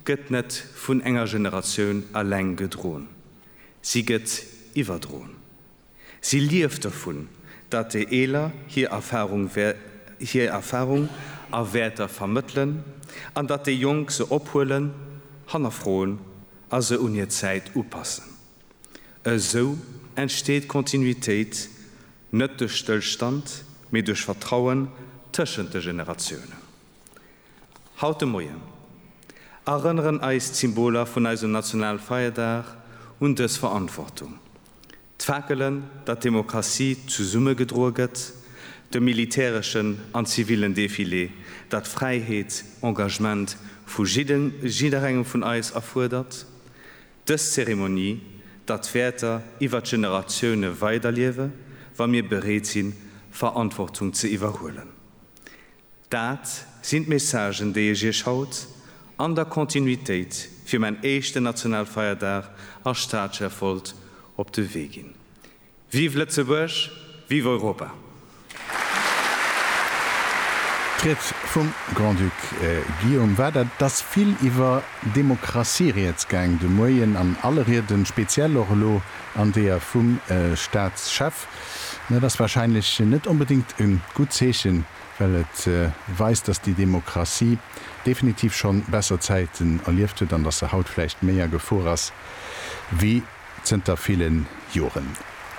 gëtt net vun enger Generatioun alleng gedroen, si gëtt iwwerdroen. Si lieft dovun, datt déi Eeler hir Erfahrung a Wäerter vermëttelen an datt déi Jonk se ophuelen, hannerfroen a se un hir Zäit upassen. Esou entsteet Kontinuitéit net duerch Stëllstand, mee duerch Vertrauen tëschent de Generatiounen. Haut de Moien erënneren eis d'Symboler vun eisem Nationalfeierdag un dës Verantwortung, d'Fakelen, datt d'Demokratie zesumme gedroe gëtt, de militäreschen an zivilen Defilé, datt d'Fräiheet Engagement vu jidderengem vun eis erfuerdert, dës Zeremonie, datt d'Wäerter iwwer d'Generatioune weiderliewe wa mir bereet sinn, Verantwortung ze iwwerhuelen. Dat sinn d'Messagen, déi ech Iech haut, an der Kontinuitéit, fir mäin éischten Nationalfeierdag als Staatschef wollt op de Wee ginn. Vive Lëtzebuerg, vive Europa! D'Ried vum Grand-Duc Guillaume war dat. Et ass vill iwwer Demokratie rieds gaang de Moien an alle Rieden, speziell och elo an deeër vum Staatschef. Dat ass wahrscheinlech net onbedéngt e gutt Zeechen, well et weist, datt déi Demokratie definitiv schonn besser Zäiten erlieft huet an datt se haut vläicht méi a Gefor ass wéi zënter ville Joren.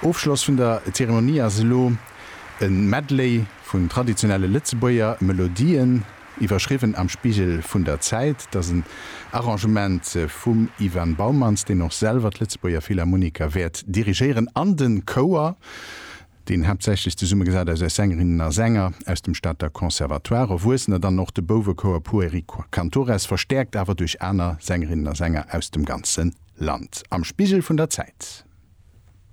Ofschloss vun der Zeremonie ass elo e Medley vun traditionelle Lëtzebuerger Melodien. Iwwerschriwwen am Spiegel vun der Zäit, dat ass en Arrangement vum Ivan Boumans, deen och selwer d'Lëtzebuerger Philharmoniker wäert dirigéieren an de Chouer, deen haaptsächlech zesummegesat ass aus Sängerinnen a Sänger aus dem Stater Conservatoire, Erwuessener, dann och de Bouwechouer Pueri Cantores, verstäerkt awer duerch aner Sängerinnen a Sänger aus dem ganze Land. Am Spiegel vun der Zäit.